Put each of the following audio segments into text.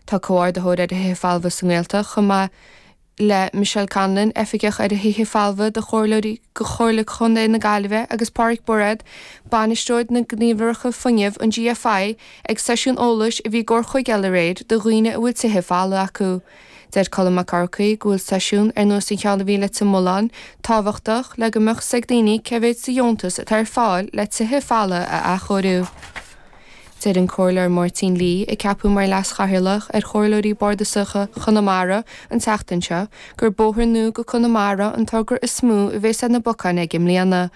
Bhí Comhordaitheoir ar Thithe Folmha sa nGaeltacht chomh maith le Michelle Conlon, Oifigeach ar Thithe Folmha de Chomhairle Contae na Gaillimhe agus Páraic Bairéad, Bainisteoir na Gníomhaireachta Fuinnimh an GFI ag seisiún eolais a bhí i gCor na Móna aréir do dhaoine a bhfuil tithe folmha acu. Deir Colm Mac Fhearchaigh go bhfuil seisiún ar nós an cheann a bhí Tigh Mholáin tábhachtach le go mbeadh a fhios ag daoine cé mhéad sa dheontas atá ar fáil le tithe folmha a athchóiriú. Deir an Comhairleoir Máirtín Lee, a ceapadh mar Leas-Chathaoirleach ar Chomhairleoirí Bardasach Chonamara an tseachtain seo, gur bóthar nua go Conamara an togra is mó a bheas ar na bacáin aige mbliana.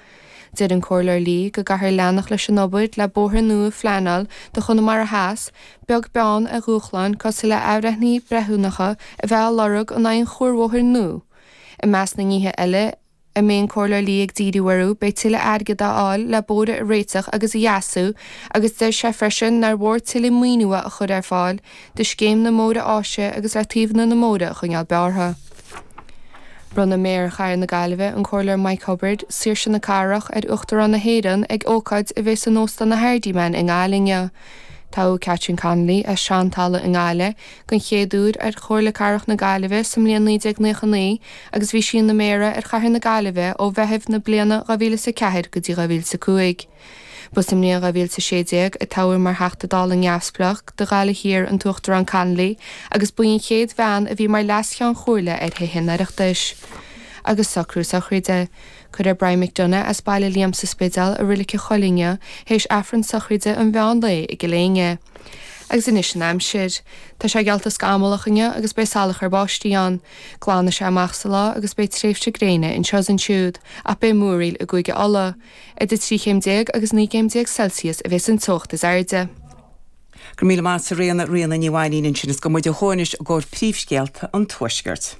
Deir an Comhairleoir Lee go gcaithfear leanacht leis an obair le bóthar nua a phleanáil do Chonamara Theas, beag beann ar dhúshláin cosúil le athbhreithnithe breithiúnacha a bheith á lorg in aghaidh an chuarbhóthair nua. I measc na nithe eile a mbeidh an Comhairleoir Lee ag díriú orthu, beidh tuilleadh airgid a fháil le bóithre a réiteach agus a dheasú agus deir sé freisin nár mhór tuilleadh maoinithe a chur ar fáil do Scéim na mBóithre Áise agus le taobhanna na mbóithre a choinneáil bearrtha. Bronnfaidh Méara Chathair na Gaillimhe, an Comhairleoir Mike Cubbard, Saoirse na Cathrach ar Uachtarán na hÉireann ag ócáid a bheidh san Óstán an Hardiman i nGaillimh inniu. Toghadh Catherine Connolly, as Seantalamh i nGaillimh, den chéad uair ar Chomhairle Cathrach na Gaillimhe sa mbliain 1999 agus bhí sí ina Méara ar Chathair na Gaillimhe ó Mheitheamh na bliana 2004 go dtí 2005. Ba sa mbliain 2016 a toghadh mar Theachta Dála Neamhspleách do Ghaillimh Thiar an tUachtarán Connolly agus ba í an chéad bhean a bhí mar Leas-Cheann Comhairle ar Thithe an Oireachtais. Agus socrú sochraide. Cuirfear Brian McDonagh as Baile Liam sa Spidéal i Reilig an Choillín théis Aifreann sochraide um mheán lae i gCill Éinne. Agus anois an aimsir. Tá sé geallta scamallach inniu agus beidh salachar báistí ann. Glanfaidh sé amach sa lá agus beidh tréimhsí gréine anseo is ansiúd ach beidh múraíl i gCúige Uladh. Idir 13 céim agus 19 céim Celsius a bheas an teocht is airde. Go raibh míle maith agat a Ríona, Ríona Ní Mhainín ansin is gabhfaidh muid ó thuaidh anois i gcomhair príomhscéalta an Tuaiscirt.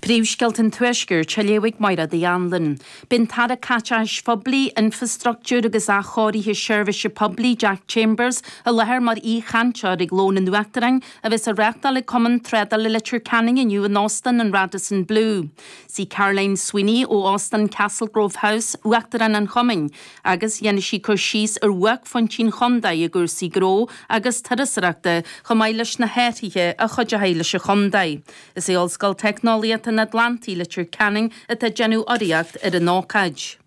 Príomhscéalta an Tuaiscirt á léamh ag Mairéad Uí Anluain. Beidh an tAire Caiteachais Phoiblí, Infreastruchtúir agus Athchóirithe Seirbhíse Poiblí, Jack Chambers, i láthair mar aoichainteoir ag Lón an Uachtaráin a bheas á reáchtáil ag Cumann Trádála Leitir Ceanainn inniu in Óstán an Radisson Blu. Sí Caroline Sweeney ó Óstán Castlegrove House uachtarán an chumainn agus déanfaidh sí cur síos ar bhuaicphointí an chontae i gcúrsaí gnó agus turasóireachta chomh maith leis na hathruithe a chuideodh leis an chontae. Is í Ollscoil Teicneolaíochta an Atlantaigh, Leitir Ceanainn atá ag déanamh urraíocht ar an ócáid.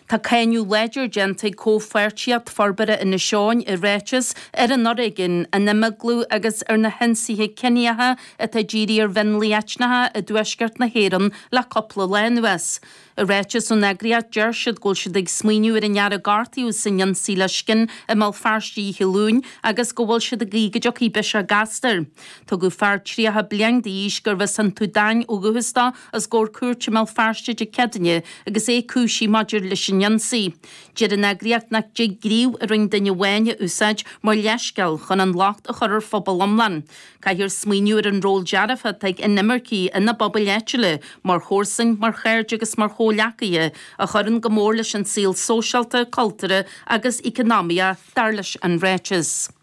Tá cáineadh láidir déanta ag Comhpháirtíocht Forbartha Inis Eoghain i ráiteas ar an fhoréigean, an imeaglú agus ar na hionsaithe ciníocha atá dírithe ar mhionlaigh eitneacha i dtuaisceart na hÉireann le cúpla lá anuas. I ráiteas ón eagraíocht deir siad go bhfuil siad ag smaoineamh ar an fhear a gortaíodh san ionsaí le scian i mBéal Feirste oíche Luain agus go bhfuil siad ag guí go dtiocfaidh biseach gasta air. Tugadh fear 30 bliain d'aois gurb as an tSúdáin ó dhúchas dó, os comhair cúirte i mBéal Feirste Dé Céadaoine agus é cúisithe maidir leis an ionsaí. Deir an eagraíocht nach dtig gníomh a rinn duine amháin a úsáid mar leithscéal chun an locht a chur ar phobal iomlán. Caithfear smaoineamh ar an ról dearfach atá ag inimircigh ina bpobail áitiúla, mar chomharsain, mar chairde agus mar chomhleacaithe, a chuireann go mór leis an saol sóisialta, cultúrtha agus eacnamaíoch, dar leis an ráiteas.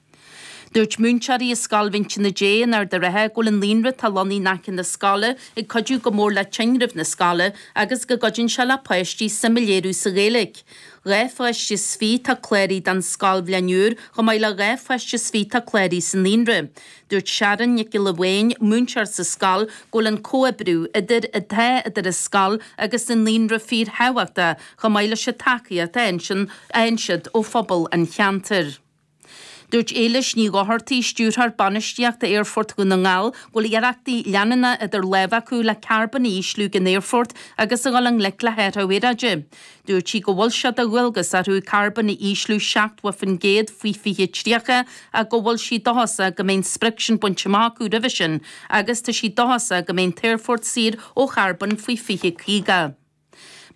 Dúirt múinteoirí i Scoil Mhín Tine Dé in Ard an Rátha go bhfuil an naíonra atá lonnaithe in aice na scoile ag cuidiú go mór le tinreamh na scoile agus go gcuideann sé le páistí suim a léiriú sa Ghaeilge. Dhá pháiste is fiche atá cláraithe don scoilbhliain úr chomh maith le dhá pháiste is fiche atá cláraithe sa naíonra. Dúirt Sharon Nic Giolla Bháin, múinteoir sa scoil, go bhfuil an comhoibriú idir atá idir an scoil agus an naíonra fíorthábhachtach chomh maith leis an tacaíocht a fhaigheann siad ó phobal an cheantair. Dúirt Éilis Ní Dhochartaigh, Stiúrthóir Bainistíochta Aerfort Dhún na nGall, go bhfuil iarrachtaí leanúnacha idir lámha acu le carbón a ísliú den aerfort agus a dhul i ngleic le hathruithe aeráide. Dúirt sí go bhfuil sé de dhualgas orthu carbón a ísliú 70% faoi 2030 ach go bhfuil sí dóchasach go mbeidh an sprioc sin bainte amach acu roimhe sin agus tá sí dóchasach go mbeidh an t-aerfort saor ó charbón faoi 2050.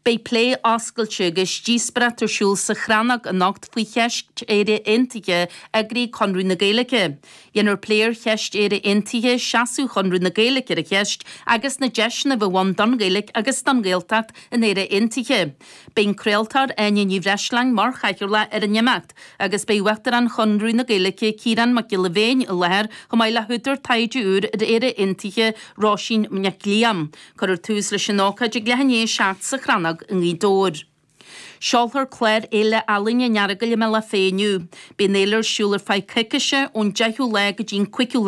Beidh plé oscailte agus díospóireacht ar siúl sa Chrannóg anocht faoi cheist Éire Aontaithe eagraithe ag Conradh na Gaeilge. Dhéanfar plé ar cheist Éire Aontaithe, seasamh Chonradh na Gaeilge ar an cheist agus na deiseanna a bheadh ann don Ghaeilge agus don Ghaeltacht in Éire Aontaithe. Beidh an craoltóir Áine Ní Bhreisleáin mar chathaoirleach ar an imeacht agus beidh Uachtarán Chonradh na Gaeilge, Ciarán Mac Giolla Bhéin i láthair chomh maith le húdar taighde úr ar Éire Aontaithe, Róisín Nic Liam. Cuirfear tús leis an ócáid ag leath i ndiaidh a seacht sa Chrannóg i nGaoth Dobhair. Seolfar clár Fhéile Ealaíon an Earagail i mBealach Féich inniu. Beidh an fhéile ar siúl ar feadh coicíse, ón deichiú lá go dtí an cúigiú